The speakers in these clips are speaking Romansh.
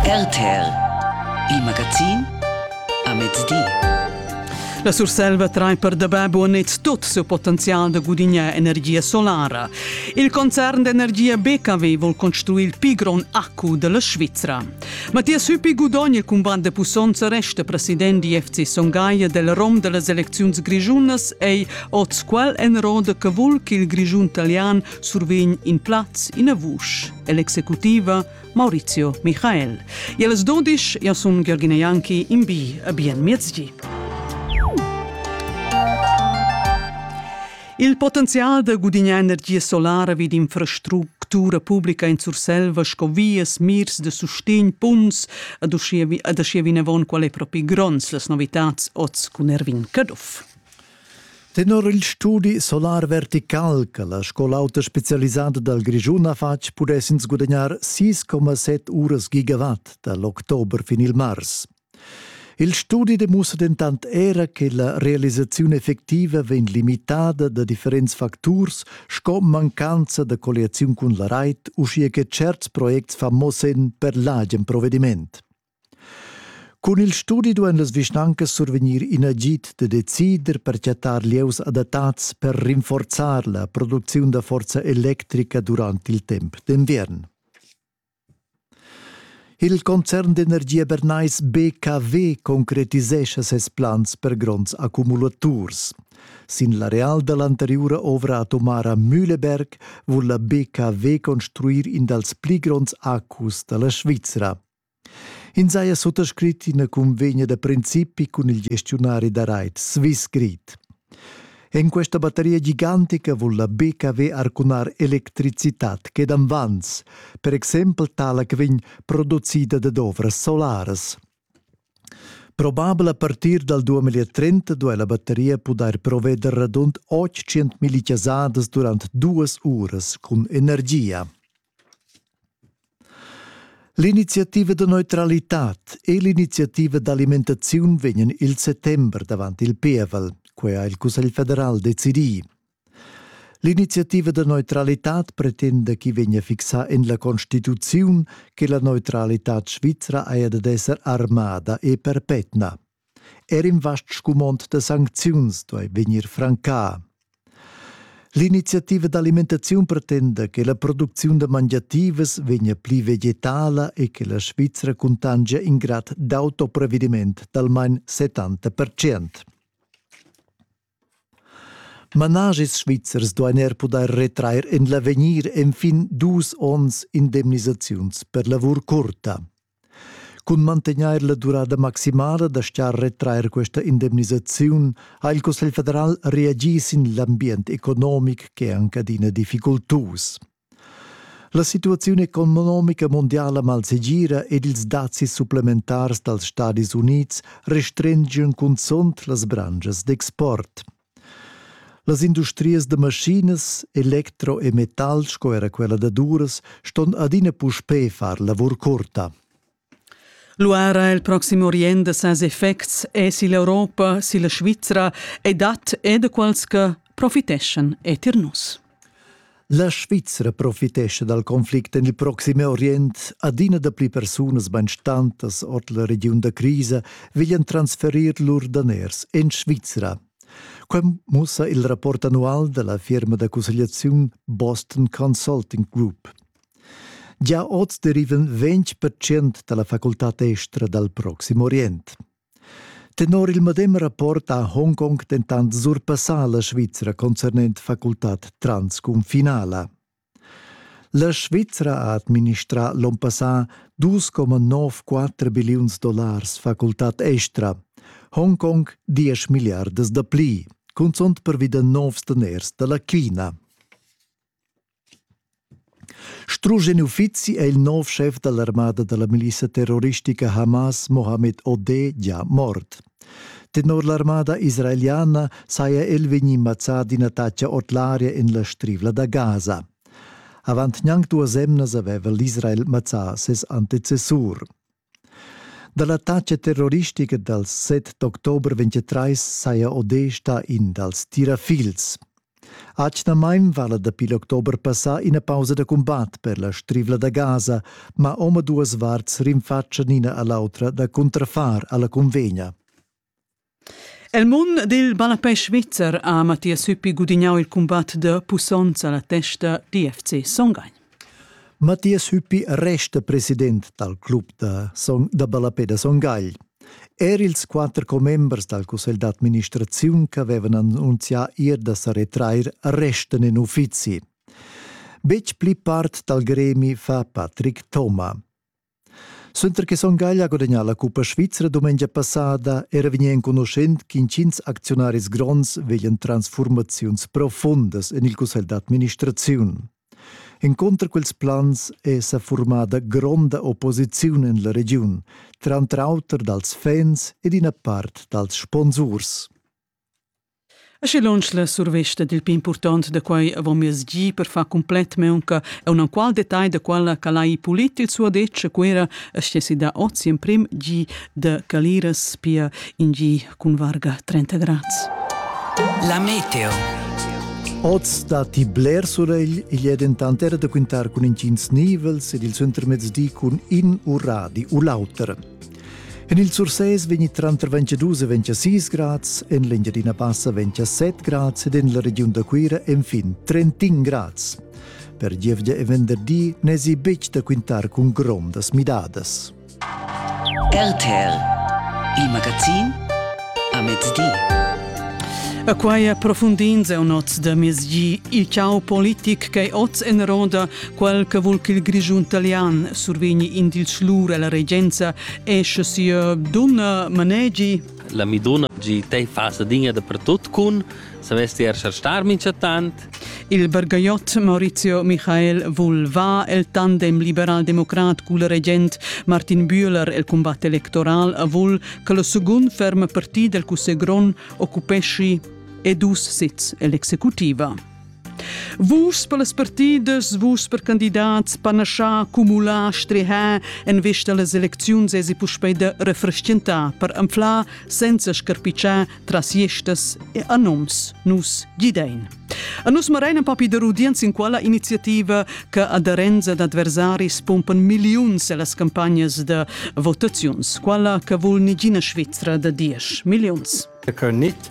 RTL Il magazin a mezdi. La Surselva train per dabè buonet tot seu potenzial da gudignar energia solara. Il concern d'energia BKW vol construir il pi gron accu della Svizzera. Mattias Hüppi gudogna cun banda pussonza resta president di FC Songaia del Rom delle elecziuns grigiunas ei oz quel en roda che vul che il Grigiun italian survegn in plaz in a vusch. e l'executiva Maurizio Michael. E las dudisch, io sun Georgina Janki, in bi a bien miezgi. Il potenzial da gudignar energia solara vid infrastructura publica in Surselva sco vias, mirs de sustegn, punts, ad uschia, ad uschia vinavon qual è propi gronds las novitats oz cun Erwin Caduff. Tenor il studi solar vertical che la scola auta specialisada dal Grischun ha fatg pudess ins gudagnar 6,7 uras gigawatt dal october fin il mars. Il studi demussa dentant era che la realisaziun effectiva vegn limitada da differents facturs sco mancanza da colliaziun cun la rait, uschia che certs projects fa mo senn per l'agen provediment. Cun il studi duein las vischnancas survegnir in agid da decider per chattar lieus adattats per rinforzar la producziun da forza electrica durant il temps d'enviern. Il concern d'energia bernais BKW concretisescha ses plans per gronds accumulaturs. Sin l'areal dall'anteriura ovra atomara Mühleberg vul la BKW construir in dals pli gronds accus dalla Svizra. Ins haja suttascrit ina cunvegna da principi cun il gestiunari da rait Swissgrid. En questa bateria gigantica vul la BKW arcunar electricitad che davans, per exempel tala che vegn producida da ovras solaras. Probabel a partir dal 2030 duai la bateria pudair proveder radund 800 millichasadas durant duas uras cun energia. L'iniziativa da neutralitad e l'iniziativa d'alimentaziun vegnan il settember davant il pievel, quei ha il Cussegl federal decidì. L'iniziativa da neutralitad pretenda chi vegna fixà en la Constituziun che la neutralitad svizra haja dad esser armada e perpetna. Er in vast scumond da sancziuns duai vegnir francà. L'iniziativa d'alimentaziun pretenda che la producziun da mangiativas vegnia pli vegetala e che la Svizra cuntangia in grad d'autoprevediment d'almain 70%. Managis svizzers duain er pudair retrair en l'avegnir enfin dus onns indemnisaziuns per lavur curta. Cun mantegnair la durada maximala da star retrair questa indemnisaziun ha il Cussegl federal reagì sin l'ambient economic ch'è anc adina difficultus. La situaziun economica mundiala malsegira ed ils dazis supplementars dals Stadis Unids restrengian cunzunt las branschas d'export. Las industrias da maschinas, elektro e metal sco era quella da duras ston adina puspè far lavur curta. Luara il proxim orient da ses effects èsi l'Europa, si la Svizra e dat er da quels che profiteschan etir nus. La Svizra profitescha dal conflict en il proxim Orient. Adina dapli persunas bainstantas ord la regiun da crisa veglian transferir lur daners en Svizra. Quem mussa il rapport annual da la firma da cussegliaziun Boston Consulting Group. Gia oz derivan ventg percent dalla facultad estra dal Proxim Orient. Tenor il medem rapport ha Hongkong dentant surpassà la Svizra concernent facultad transcunfinala. La Svizra ha administrà l'onn passà 2,94 billiuns dollars facultad estra, Hongkong 10 miliardas da pli, cunzunt pervi da novs daners da la China. Strusch in uffizi è il nov schef da l'armada da la milissa terroristica Hamas, Mohammed Odeh, gia mort. Tenor l'armada israeliana saja el vegnì mazzà d'in attacca ord l'aria en la strivla da Gaza. Avant gnanc duas emnas aveva l'Israel mazzà ses antecessur. Da l'attacca terroristica dals 7 d'october 23 saja Odé stà in dals tirafils. Atgnamain vala dapi l'october passà ina pausa da cumbat per la strivla da Gaza, ma omaduas varts rinfatschan ina a l'autra da cuntrafar alla cunvegna. El mund dil ballapè svizzer ha Mathias Süppi gudignau il cumbat da pussonza alla testa d'FC Songheim. Mathias Hüppi resta president dal club da, Song, da ballapè da Songagl. Er ils quatter commembers dal cussegl d'administraziun ch'avevan annunzià ir da sa retrair restan in uffizi. Betg pli part dal gremi fa Patrick Thoma. Suenter che Son Gagl ha gudagnà la cuppa svizra dumengia passada era vegnì enconuschent ch'intgins acziunaris gronds veglian transfurmaziuns profundas en il cussegl d'administraziun. Encunter quels plans è sa formada gronda opposiziun en la regiun, tranter auter dals fans e d'ina part dals sponsurs. Aschi lunsch la survesta dil pli impurtont da quei avon miez gi per far cumplet meunca e un enqual detagl da quella che lai pulit il suo detg a Cuera aschia sida oz emprim gi da Caliras pia in gi cun varga 30 grads. La meteo. Oz datti bler suregl, igl è dentant era da quintar cun intgins nivels ed il suentermezdi cun in uradi u l'auter. En il Sursés vegni tranter 22 e 26 grads, en l'Engiadina Bassa 27 grads ed en la regiun da Cuira enfin 31 grads. Per gievgia e venderdi n'èsi betg da quintar cun grondas midadas. RTL, il magazin a mezdi. A quai approfundins eu noz da mezdi il ciao politic che oz en roda Quel che vul ch'il Grischun talian survegni in dils lur ella regenza è sche sia donna manegi. La mi donna gi tei fasa digna dappertut cun sa vesti er star mincha tant. Il bergaiot Maurizio Michael vul va el tandem liberal-democrat cul regent Martin Bühler el combat electoral a vul che lo secund ferm partit del cusse gron occupesci e dus sits el'executiva. Vus per las partidas, vus per candidats, panaschà, cumular, strehar en vista las elecziuns esi puspei da refrestgentar per anflar senza scarpicciar tras iestas e anoms nus gidein. A nus marein papi da rudienz in quella iniziativa che aderenza d'adversaris pompan milliuns las campagnas da votaziuns, quella che vul nigina Svizzera da diesch milliuns. Che nit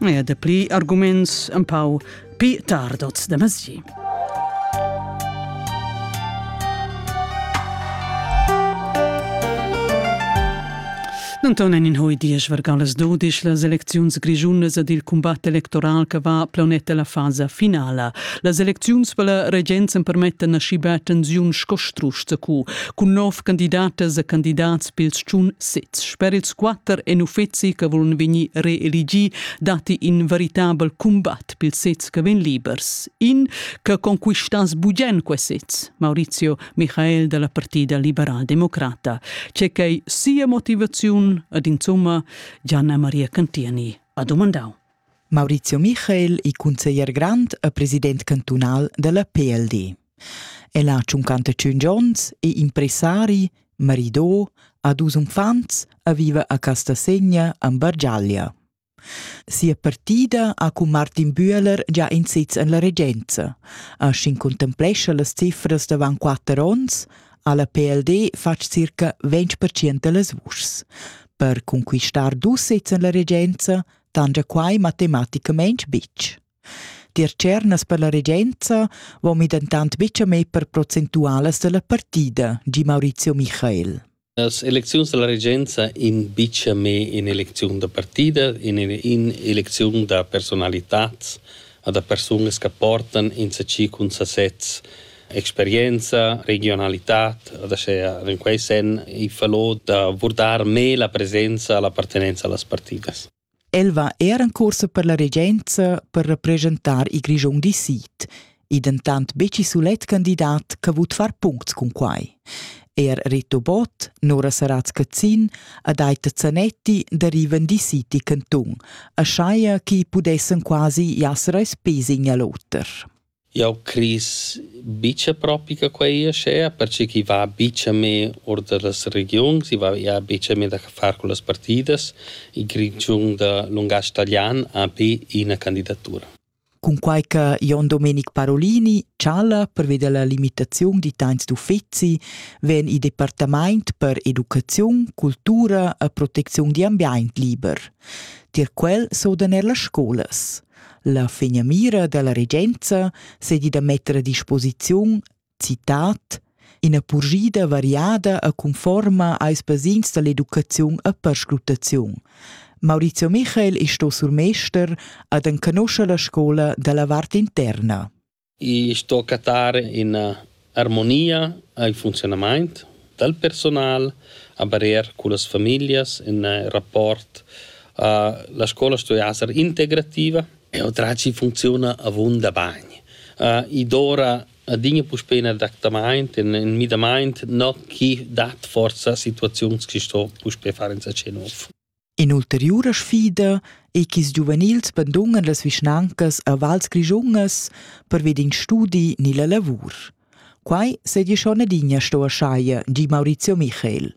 e dapli arguments un pau pi tardots de mesi. Anton in hoi diesch vergalas dodisch las elecziuns grigiunas ed il combat electoral che va planeta la fasa finala. Las elecziuns per la regenza permettan asci bia tensiun sco strusch cu, cun nov candidatas e candidats pils tschun sez. Per ils quatter en uffeci che volen vegnir reeligi datti in veritabel combat pils sez che vegn libers. In che conquistass bugen quei sez, Maurizio Michael dalla Partida Liberal Democrata, c'è che sia motivaziun ed insomma Gianna Maria Cantieni ha domandau. Maurizio Michael, il consiglier grand e president cantunal della PLD. El ha tschuncanta tschun onns, è impressari, marido, ha dus uffants e viva a Castasegna en Bargiaglia. Sia partida ha cun Martin Bühler già in sitz en la regenza. A sin contemplescha las cifras davant quatter onns ha la PLD fatg circa 20% da las vuschs. Per conquistar dus sezs en la regenza tangia quai matematicamente bitg. Tier tschernas per la regenza vommi dentant betga mei per procentualas dalla partida, gi Maurizio Michael. Las elecziuns dalla regenza in bicia me in elecziun da partida, in, in elecziun da personalitads, a da persunas che portan insacì cun sasez experienza, regionalitad, da sche in quei sen i falò da vurdar me la presenza, la appartenenza allas partidas. El va er en cuorsa per la regenza per representar il Grischun di sid, ei dentant betg il sulet candidat che vut far puncts cun quai. Er Rito Bott, Nora Saratz-Cazin ed Aita Zanetti derivan di City Cantun, a schaia chi pudessen quasi jasser als pes in a l'oter. Jau cris buca propi che quei ei aschia, perche ch'i va buca mê or dallas regiuns, i va ia buca mê da far con las partidas. Il Grischun da lungatg talian ha be ina candidatura. Cunquai che Jon Domenic Parolini chala perveda la limitaziun d'italians d'uffeci vegn il departament per educaziun, cultura e protecziun d'ambient liber. Tier quel sodan er las scolas. La finamira dalla regenza seigi da metter a disposiziun citat ina purschida variada e conforma als basins dall'educaziun e perscrutaziun. Maurizio Michael è sto surmester ad enconoscer la scola dalla vart interna. I sto cattar üna armonia al funziunamaint dal personal, a barier cullas famiglias, ün rapport a la scoula stuia esser integrativa e otracci funcziuna avunda bagn. I dovrà adina puspè ün adattamaint, ün ün müdamaint, no chi dat forsa situaziuns chi sto puspè far insatge nouv. In'ulteriura sfida ei ch'ils giuvenils bandungan las vischnancas a vals grischungas pervi d'in studi ni la lavur. Quai seigi schon adina sto aschia, di Maurizio Michael.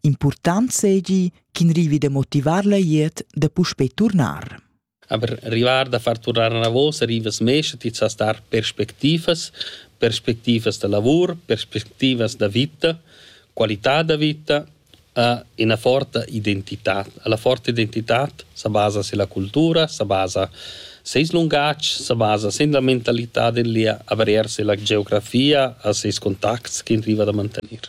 Impurtant seigi ch'in rivi da motivar la glieud da puspei turnar. Aber rivar da far turnar anavos rivas mescha ti sas dar perspectivas, perspectivas da lavur, perspectivas da vita, qualità da vita, a ina forta identitad. La forta identitad sa basa silla cultura, sa basa seis lungatg, sa basa sin la mentalità del lia, aber eir silla geografia a seis contacts ch'in riva da mantener.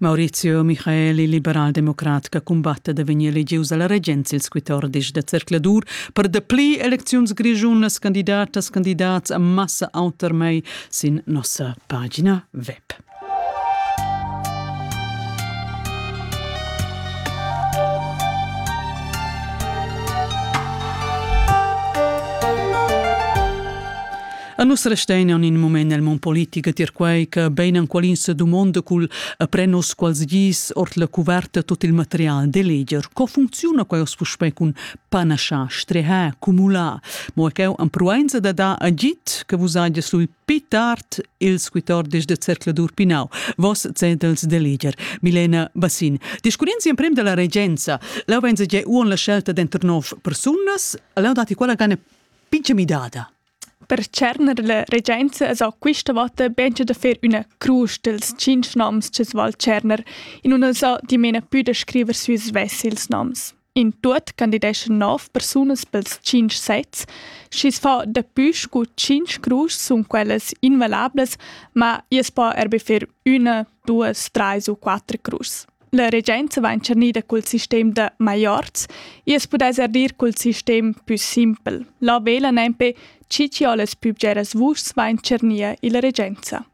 Maurizio Michaeli, liberaldemocrat che cumbatta da vegnir elegius alla regenza ils 14 da zercladur per dapli elecziuns grischunas candidatas candidats a massa autermai sin nossa pagina web. A nus restein aunc in mument nel mon politic a tier quei che bein enqualin se dumonda cul a pren nos quals gis ord la cuverta tot il material de leger. Co funcziona quei os puspei cun panascha, streha, cumula? Mo cheu am pruenza da da agit che vus agies lui pi tard il squitordis de Zercladur Pinau, vos cedels de leger. Milena Bassin. Discurrenzi emprem della regenza, lau venza ge uon la scelta denter nov persunas, lau dati quella gane pince midada. Per tscherner la regenza esa quista vota beincha da fer üna crusch dels tschinch noms cha's val tscherner, in nun esa dimena pü da scriver sü svess ils noms. In tuot candideschan nov persunas pels tschinch sezs, schi's fa dapü scu tschinch cruschs sun quellas invalablas, ma i's po eir be fer üna, duos, trais u quatter cruschs. La regenza va entschernida cul sistem da maiorz e as pudais er dir cul sistem pü simpel. La vela nempe chi chi ho las pübgeras vuschs va entschernir illa regenza.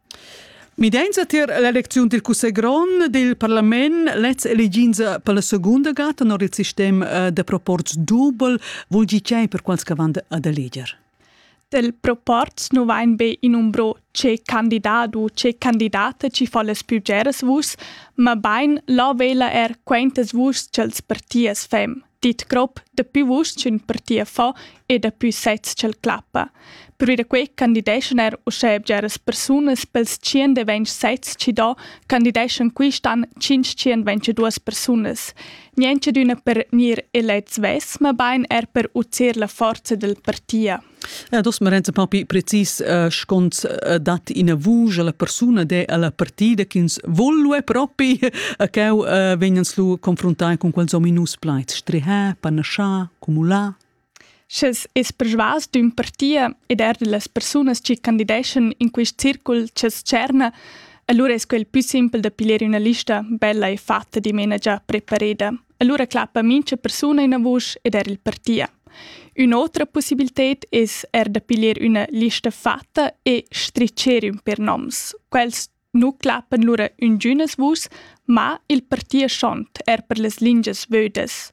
Midainsa tier l'elecziun dil cussegl grond dil parlament, lez eliginsa per la segunda gata, non il sistem eh, de proporz dubel, vul gi per quals che van ad eleger? Del proporz nu vain be innumbro che candidat u che candidata chi fa las plübgeras vus, mabain là vela eir quaintas vus cha'ls partiers fem, dit grob, dapü vus ch'ün partier fa e dapü sezs ch'el clappa. Pervi da que candideschan eir uschè bgeras persunas pels tschient e ventg sezs chi do candideschan quist an tschinch tschient ventg e duos persunas. Nientscha d'üna per gnir elets vess, mabain er per udir la forza del partia. Eh, dos Marenza paupi precis eh, schons eh, dat ina vusch alla persuna de alla partida ch'ins volue propi a cheu vegnan lu confrontai con quels ominus plaids strihà, panascià, cumulà. Sches es persvas d'ün partia ed eir da las persunas chi candideschan in quist circul cha's tscherna, alura es quel pü simpel da piglier üna lista bella e fatta dimena già prepareda. Alura clappa mincha persuna üna vusch ed eir il partia. Ün'otra pussibilted es eir da piglier üna lista fatta e stricher ün per noms. Quels Nu clappan lura üngünas vus, ma il partia schont er per las lingias vödas.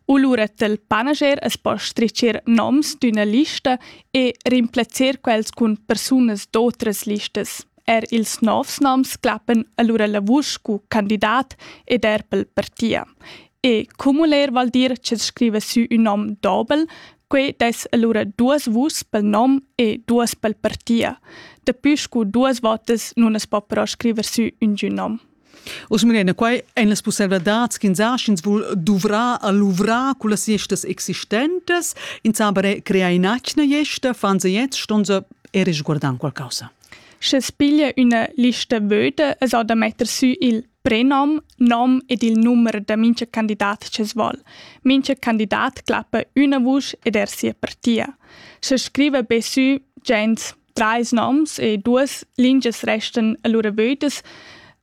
U lura t'el panager es po stricher noms d'üna lista e rimplazzer quels cun persunas d'otras listas. Er ils novs noms clappan allura la vusch scu candidat ed er pel partia. E cumuler vol dir che scriva sü ün nom dobel, Quei dess allura duas vuschs pel nom e duas pel partia. Daplü scu duas votas nun as po però scriver sü üngün nom. Uss Mirena, quai èn las pusselvadads ch'ins ha, sch'ins vul duvrar a luvrar cullas estas existentes, ins ha bare creà in'atgna gesta, fan se jetzt, ston se e resguardar qualcosa. Sche piglia üna lista vöda es da metter sü il Prenom, nom ed il numer da mincha candidat cha's voul. Mincha candidat clappa üna vusch ed er sia partia. Scha scriva be sü gens trais noms e duas lingias restan allura vödas,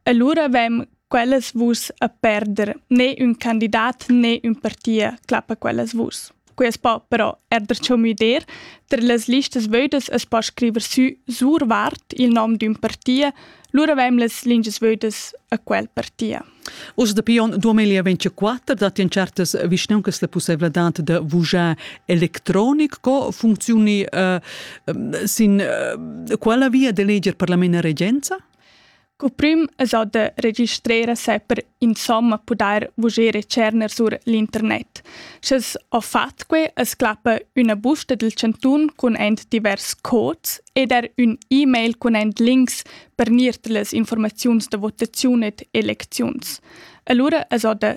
allura vem quellas vuschs a perder. Ne ün candidat ne ün partia clappa quellas vuschs. Quest pa però è darcheu müder, ter las listas vödas as po scriver sü survart il nom d'ün partia, lura vaim las lingias vödas a quel partia. Uss dapi onn 2024 datti en certas vischnancas la pussevladad da vujar electronic. Co funczioni uh, sin uh, quella via da leger per la mena regenza? Cuprüm es ot da registrer a se per insomma pudair vuger e tscherner sur l'internet. Sch'es ho fat que, es clappa üna busta del chantun cun ent divers cods ed er ün e-mail cun ent links per gnir las informaziuns da votaziun ed elecziuns. Alura es ot da